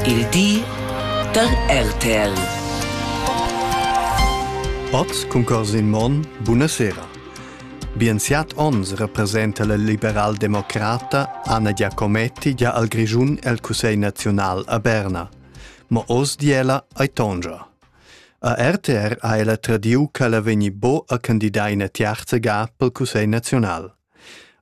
Il di da RTL. Oz cun Corsin Monn, buonasera. Bien siat ons representa la liberal-democrata Anna Giacometti gia al Grischun el Cussegl naziunal a Berna. Ma oz di ella ai tongia. A RTR ha ella tradiu ch'ella vegni bo a candidar ina tiarza ga pel Cussegl naziunal.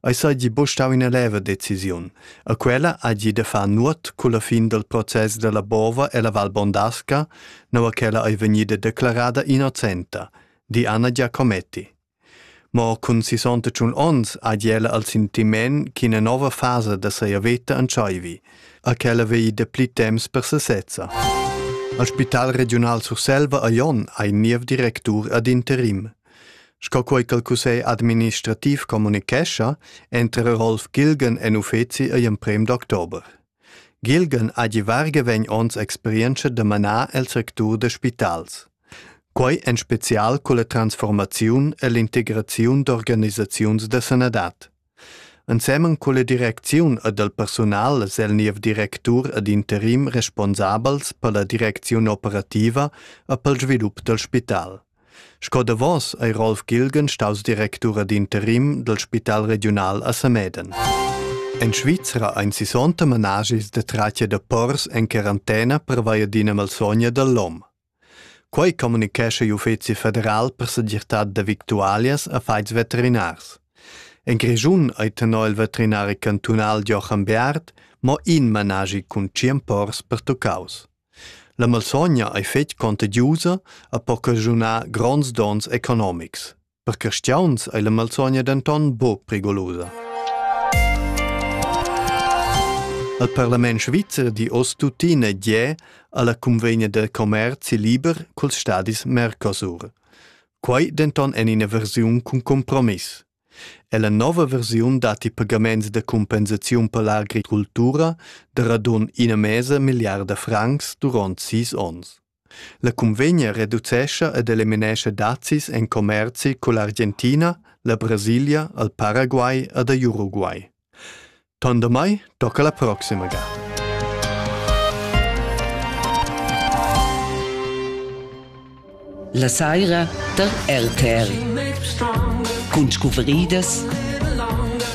Ei seigi buc stau ina leva decisiun, e quella hagi da far nuot culla fin dal process dalla bova ella Val Bondasca, nua ch'ella ei vegnida declarada innocenta, di Anna Giacometti. Mo cun sissonta tschun onns hagi ella il sentiment ch'ina nova fasa da sia veta entscheivi, e ch'ella vegli dapli temps per sesezza. Il Spital regiunal Surselva a Jon ha in niev directur ad interim. Sco quei ch'el cussegl administrativ communichescha, entera Rolf Gilgen en uffeci igl emprem d'october. Gilgen ha gi varga vegn ons experienza da manar el sectur da spitals. Quei en spezial culla transformaziun e l'integraziun d'organisaziuns da sanadad. Ensemen culla direcziun ed el persunal es el niev directur ed interim responsabels per la direcziun operativa e pel svilup dal spital. Sco davos ei Rolf Gilgen staus directur ed interim dal Spital regiunal a Sameden. En Svizra ein sisonta managis de tratga de pors en quarantena per via d'ina malsogna dall'om. Quei communicescha l'Uffeci federal per segirtad da victualias affons veterinars. En Grischun ei tenor il veterinari cantunal Joachim Beard mo in managi cun tschien pors pertuccaus. La malsogna ei fetg contagiusa e po caschunar gronds donns economics. Per cristiauns ei la malsogna denton buc prigolosa. Al parlament svizzer di oz tuttina gie alla convegna del commerci liber culs stadis Mercosur. Quei denton en ina versiun cun compromiss. E la nova versiun dat i pagaments de compensaziun per l'agricoltura de radun ina mesa miliarda francs durant sis ons. La cunvegna reducescha ed eliminescha dazis en commerzi cull'Argentina, la Brasilia, il Paraguay ed er Uruguay. Ton damai tocca la proxima gada. La saira da RTR. Cun scuvridas